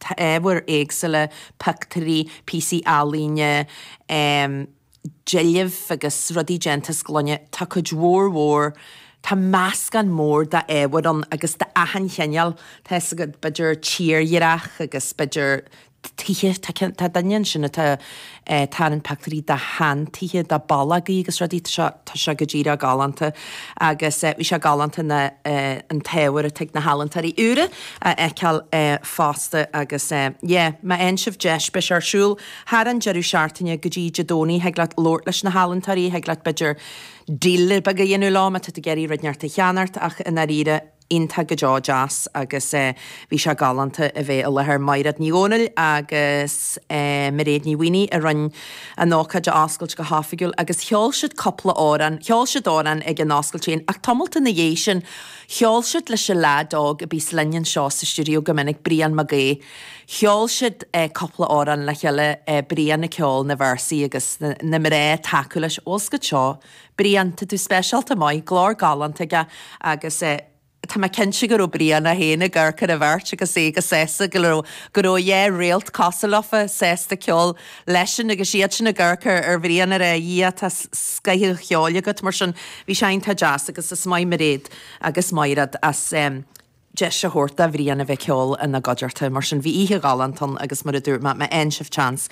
tá ábhair éagsúla, pioctúirí, píosaí ealaíne, deilbh agus rudaí déanta as gloine, tá cuid mhór mhór, tá meascán mór d'ábhair ann agus d'achan chineál, tá fhios agat, b'fhéidir tírdhreach agus b'fhéidir tithe, tá duine ansin atá. eh, a tharraing pioctúirí de shean-tithe, de bhallógaí agus rudaí, tá sé, tá sé go díreach galánta agus, eh, bhí sé galánta na, eh, an t-ábhar atá ag na healaíntóirí úra a fheiceáil, eh, fosta agus, eh, yeah, má fhaigheann sibh deis, beidh sé ar siúl thar an deireadh seachtaine go dtí Dé Domhnaigh, thig leat labhairt leis na healaíntóirí, thig leat b'fhéidir deal beag a dhéanamh leo má tá tú ag iarraidh rud inteacht a cheannacht ach i ndáiríre, iontach go deo deas agus bhí sé galánta a bheith i láthair. Maighread Ní Dhomhnaill agus Mairéad Ní Mhaonaigh a rinne an ócáid a oscailt go hoifigiúil agus cheol siad cúpla amhrán. Cheol siad amhrán ag an oscailt féin ach tamalt ina dhiaidh sin cheol siad leis an leaid óg a bíonns linn anseo sa stiúideo go minic, Brian Mag Aoidh. Cheol siad cúpla amhrán le chéile, Brian ag ceol na véarsaí agus na mná ag tacú leis. Bhuel, scoith seo. Brian, tá tú speisialta maith, glór galánta aige agus eh, tá mé cinnte go raibh Brian é féin ag amharc ar an bheirt agus é chomh sásta, go raibh, go raibh dhá réalt cosúil leofa, sásta ceol leisean agus iadsan ag amharc ar, ar Bhrian a rá, a Dhia, tá scoith an cheoil agat mar sin, bhí sé iontach deas agus is maith Maighread agus Mairéad as eh, deis a thabhairt do Bhrian a bheith ag ceol ina gcuideachta. Mar sin, bhí oíche ghalánta ann agus mar a dúirt mé, má fhaigheann sibh chance,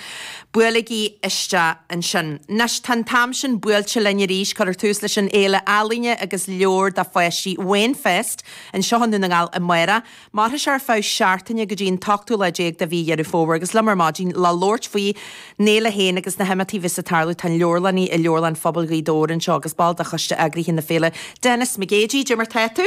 buailigí isteach ansin. Anois, tá an t-am sin buailte linn arís, cuireadh tús leis an fhéile ealaíne agus leabhar do pháistí, Wainfest, anseo i nDún na nGall amárach. Mairfidh sé ar feadh seachtaine go dtí an t-ochtú lá déag de mhí Dheireadh Fómhair agus liom ar maidin le labhairt faoin fhéile féin agus na himeachtaí a bheas ag tarlú, tá an leabharlannaí i Leabharlann Phobail Ghaoth Dobhair anseo agus ball de choiste eagraithe na féile, Denis McGeady. Caidé mar tá tú?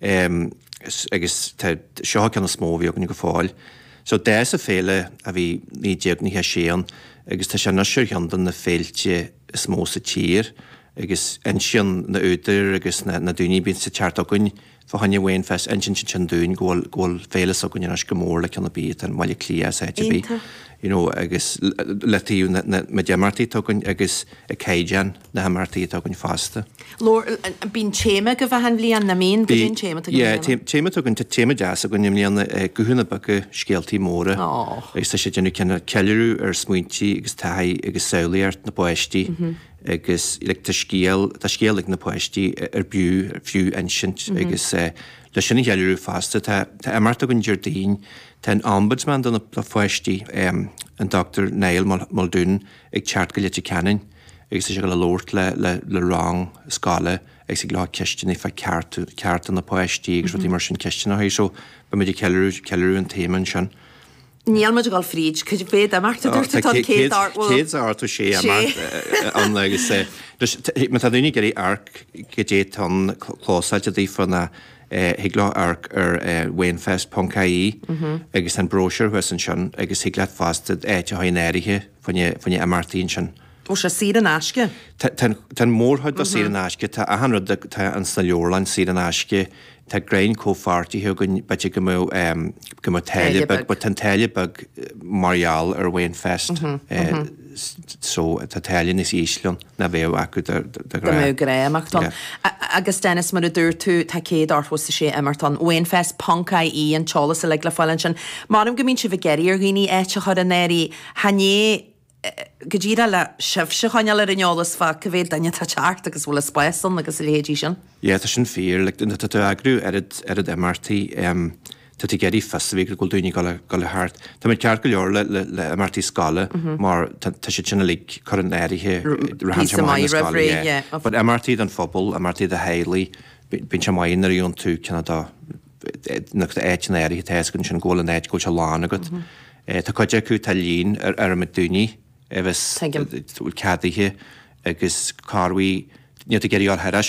Um, is, agus tá, seo an ceann is mó a bhí againne go fóill. So d'fhás an fhéile ó bhí 1996 ann agus tá sé anois ar cheann de na féilte is mó sa tír agus insíonn na údair agus na, na daoine a bíonns thart againn fá choinne Wainfest, insíonn siad sin dúinn go bhfuil, go bhfuil féile s'againne anois chomh mór le ceann ar bith atá i mBaile Átha Cliath ná áit ar bith. Iontach. You know, agus ó thaobh an, an méid imeachtaí atá againn agus a caighdeán. na himeachtaí atá againn fosta. Leoga, Bíonn téama agaibh achan bhliain, nach mbíonn? Caidé an téama agaibh i mbliana. Yeah, téama againn, tá téama deas againn i mbliana, Guthanna Beaga, Scéaltaí Móra. Oh. Agus tá sé déanamh cineál ceiliúradh ar smaointí agus taithí agus samhlaíocht na bpáistí. Agus like tá scéal, tá scéal ag na páistí ar b'fhiú, ar fiú insint agus le sin a cheiliúradh fosta tá, tá imeacht againn Déardaoin, tá an Ombudsman do na pháistí, an Dr. Niall Muldoon ag teacht go Leitir Ceanainn. Agus tá sé ag labhairt le rang scoile agus ag lorg ceisteanna fá cearta na bpáistí agus rudaí mar sin, ceisteanna mar seo. Beidh muid ag ceiliúradh an téama ansin. Beidh muid ag dul fríd cuid mhaith d'imeachtaí, a dúirt sé. Tá an chéad áit, bhuel. céad is a sé imeacht ann agus má tá daoine ag iarraidh amharc cad é atá ann, foscailte daofa ná thig leo amharc ar wainfest ponc ie agus tá an bróisiúr thuas ansin agus thig leat fosta áit a chur in áirithe, fá na himeachtaí ansin. Tá sé saor in aisce. Tá an mhórchuid acu saor in aisce, tá achan rud, atá ann sna leabharlanna saor in aisce, tá roinnt comhpháirtithe againn, b'fhéidir go mbeadh, go mbeadh táille beag, but tá an táille beag mar gheall ar Wainfest, so tá táille níos ísle ann ná bheadh acu de ghnáth. Go mbeadh grá imeacht ann. Agus Dennis, mar a dúirt tú, tá 100 is 6 imeacht ann. Wainfest ponc IE an t-eolas uilig le fáil ansin. Mar go mbíonn sibh ag iarraidh ar dhaoine áit a chur in áirithe, Chan é, go díreach, le sibhse choinneáil ar an eolas fá cá mhéad duine atá ag teacht agus an bhfuil spás ann agus a leithéidí sin. Yeah, tá sin fíor. Like, nuair atá tú ag eagrú oiread, oiread imeachtaí, um, tá tú ag iarraidh fios a bheith agat go bhfuil daoine ag dul ar, dul a theacht. Tá muid ceart go leor le, le, le imeachtaí scoile, mar tá, tá siad sin uilig curtha in áirithe, rith an téarma maith ina scoile, yeah. But imeachtaí don phobal, imeachtaí do theaghlaigh, bíonn sé maith nuair a dhéanann tú, cinnfidh, dá, an áit in áirithe tá a fhios againn ansin go bhfuil an áit, go bhfuil sé lán againn. Tá cuid acu, tá líon áirithe daoine a bhfuil ceadaithe agus cá bhfuil, níl tú ag iarraidh ortha ar ais.